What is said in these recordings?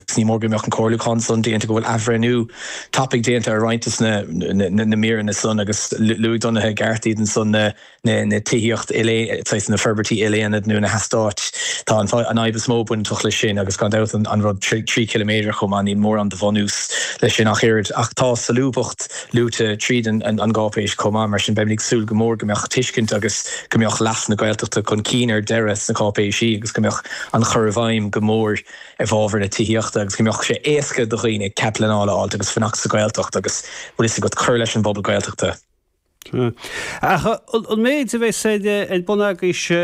Agus ní mór go mbeadh an comhairliúchán san déanta, go bhfuil athbhreithniú tapaidh déanta ar roinnt de na míreanna san agus luaigh Donncha i gceart iad ansan, na tithíocht uilesaisana, na forbairtí ilaonad nó na heastáit. Tá an fhadhb is mó bainteach leis sin agus gan dabht an rud trí chiliméadar chomh maith. Níl mórán de bhunús leis sin ach oiread ach tá solúbthacht luaite tríd an gcáipéis chomh maith. Mar sin beimid ag súil go mór go mbeadh tuiscint agus go mbeadh leas na Gaeltachta chun cinn ar deireadh sna cáipéisí agus go mbeadh an chur i bhfeidhm go mór i bhfábhar na tithíochta agus go mbeadh sé éasca do dhaoine cead pleanála a fháilt agus fanacht sa Ghaeltacht agus bhfuil fhios agat, cur leis an bpobal Gaeltachta. Ach an méid a bheas ar bun agaibhse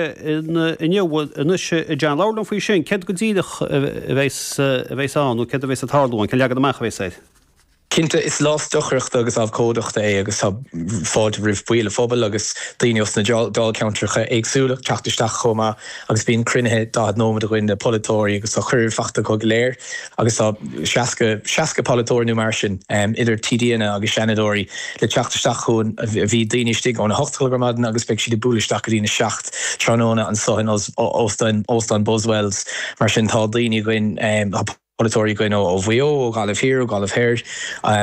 inniu, anois a John, labhair liom faoi sin, céard go díreach a bheidh ann nó céard a bheidh ag tarlú ann, cén leagan amach a bheas air? Cinnte, is lá stocaireachta agus abhcóideachta é agus tá fáilte roimh baill an phobail agus daoine osna dáilcheantracha éagsúla teacht isteach chomh maith agus bíonn cruinnithe 40 nóimead againn le polaiteoirí agus tá cuireadh fachta acu go léir agus tá 60, 60 polaiteoir nó mar sin, idir TDanna agus Seanadóirí le teacht isteach chugainn. Bhí daoine istigh ón 8 chlog ar maidin agus beidh siad ag bualadh isteach go dtí'n 7 tráthnóna anso in óstán, Óstán Buswells mar sin tá daoine againn, tá. polaiteoirí againn ó Mhaigh Eo, ó Ghaillimh Thiar, ó Ghaillimh Thoir,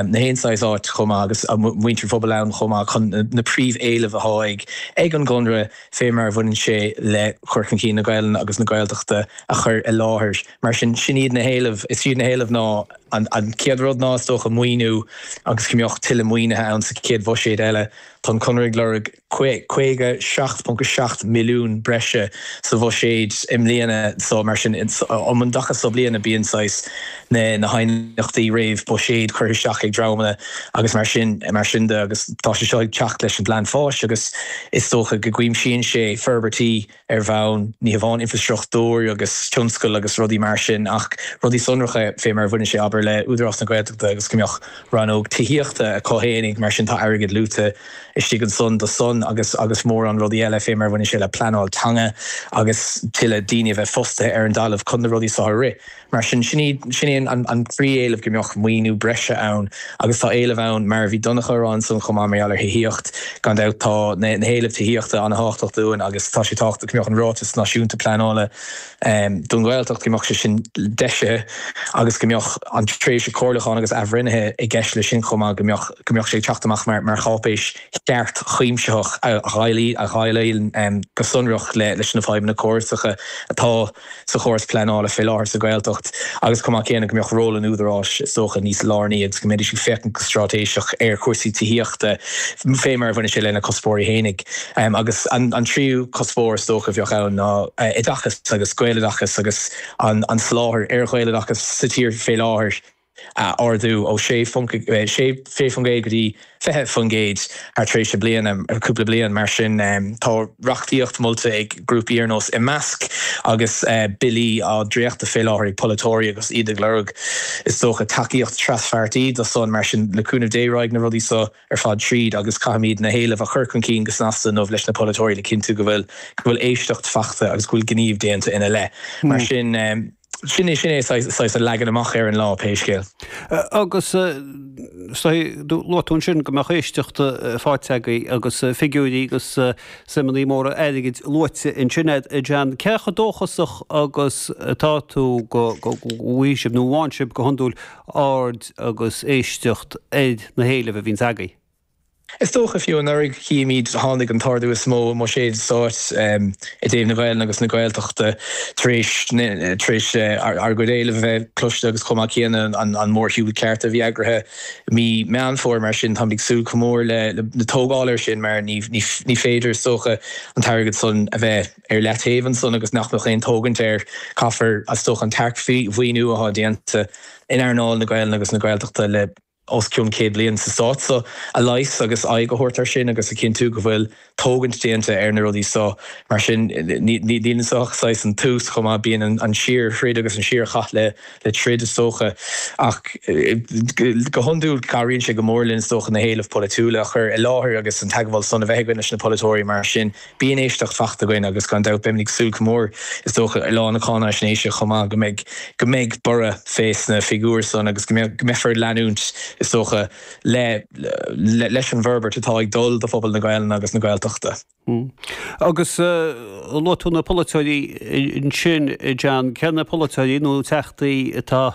nach aon saghas áit chomh maith agus muintir an phobail ann chomh maith chun na príomh-éilimh atá ag an gConradh fé mar a bhaineann sé le cur chun cinn na Gaelainne agus na Gaeltachta a chur i láthair. Mar sin, sin iad na héilimh. Is iad na héilimh ná, an chéad rud ná, is dócha, maoiniú agus go mbeadh tuilleadh maoinithe ann sa chéad bhuiséad eile. Tá an Conradh ag lorg. 57.7 milliún breise sa bhuiséad i mbliana so mar sin um an dtaca so bliana bíonn saghas na haighneachtaí réamhbhuiséid curtha isteach ag dreamanna agus mar sin mar sin de agus tá sé seo ag teacht leis an bPlean Fáis agus is dócha go gcuimsíonn sé forbairtí ar bhonn ní hamháin infrastruchtúir agus tionscail agus rudaí mar sin ach rudaí sonracha fé mar a bhaineann sé, abair, le Údarás na Gaeltachta agus go mbeadh rannóg tithíochta acu féinig mar sin tá airgead luaite istigh ansan do san agus agus mórán rudaí eile fé mar a bhaineann sé le pleanáil teanga agus tuilleadh daoine a bheith fostaithe ar an dtalamh chun na rudaí so a rith. Mar sin, sin é an príomh-éileamh, go mbeadh maoiniú breise ann agus tá éileamh ann mar a bhí Donncha ag rá ansan chomh maith mar gheall ar thithíocht, gan dabht tá na héilimh tithíochta ana thábhachtach dúinn agus tá sé tábhachtach go mbeadh an Ráiteas Náisiúnta Pleanála don Ghaeltacht, go mbeadh sé sin deisithe agus go mbeadh an tréimhse comhairliúcháin agus athbhreithnithe i gceist le sin chomh maith, go mbeadh, go mbeadh sé ag teacht amach mar, mar cháipéis cheart chuimsitheach a dhéileálfaidh, a dhéileálfaidh go sonrach leis na fadhbanna córasacha atá. sa chóras pleanála fé láthair sa Ghaeltacht agus chomh maith céanna go mbeadh ról an Údaráis is dócha níos lárnaí agus go mbeidís ag féachaint go stráitéiseach ar chúrsaí tithíochta fé mar a bhaineann sé lena cuspóirí fhéinig. Agus an tríú cuspóir is dócha a bheadh ann ná oideachas agus Gaeloideachas agus an soláthar ar Ghaeloideachas sa tír fé láthair. a ardú ó 6% go dtí 20% thar tréimhse bliana, cúpla bliain mar sin. Tá reachtaíocht molta ag grúpaí ar nós Imeasc agus billí á dréachtadh fé láthair ag polaiteoirí agus iad ag lorg, is dócha, tacaíocht traspháirtí do san. Mar sin, le cúnamh Dé raghaidh na rudaí so ar fad tríd agus caithfimíd na héilimh a chur chun cinn go snasta inniu leis na polaiteoirí le cinntiú go bhfuil éisteacht fachta agus go bhfuil gníomh déanta ina leith. Mar sin. Sin é sin é saghas an leagan amach ar an lá, pé scéal. Agus luaigh tú ansin go mbeadh éisteacht faighte agaibh agus figiúirí agus suimeannaí móra airgid luaite ansin a'd a John. Cé chomh dóchasach agus atá tú go bhfaighidh sibh, nó an bhfaigheann sibh go hiondúil, aird agus éisteacht ar na héilimh a bhíonns agaibh? Is dócha fiú anuraidh chífimíd tháinig an t-ardú is mó i mbuiséid stáit i dtaobh na Gaelainne agus na Gaeltachta tar éis tar éis ár gcuid éileamh a bheith cloiste agus chomh maith céanna an mórshiúl cearta a bhí eagraithe mí Meán Fómhair mar sin táimid ag súil go mór le tógáil ar sin mar ní féidir is dócha an t-airgead san a bheith ar leataobh ansan agus nach mbeadh aon tógaint air. Caithfear is dócha an tearcmhaoiniú athá déanta in earnáil na Gaelainne agus na Gaeltachta le os cionn céad bliain sa Stát so, a leigheas agus aghaidh a thabhairt ar sin agus a chinntiú go bhfuil tógaint déanta ar na rudaí so. Mar sin, níl anso ach saghas an tús chomh maith. Bíonn an síorthroid agus an síorchath le troid, is dócha, ach go hiondúil cabhraíonn sé go mór linn, is dócha, na héilimh pholaitiúla a chur i láthair agus an teagmháil san a bheith againn leis na polaiteoirí. Mar sin. Bíonn éisteacht fachta againn agus gan dabht beimid ag súil go mór, is dócha, ar Lá na Cáinaisnéise chomh maith, go mbeidh, go mbeidh borradh fé sna figiúir san agus go mbeadh, go mbeifear ag leanúint, is dócha, le, le, leis an bhforbairt atá ag dul do phobal na Gaelainne agus na Gaeltachta. Agus luaigh tú na polaiteoirí ansin, John, cé na polaiteoirí nó teachtaí atá,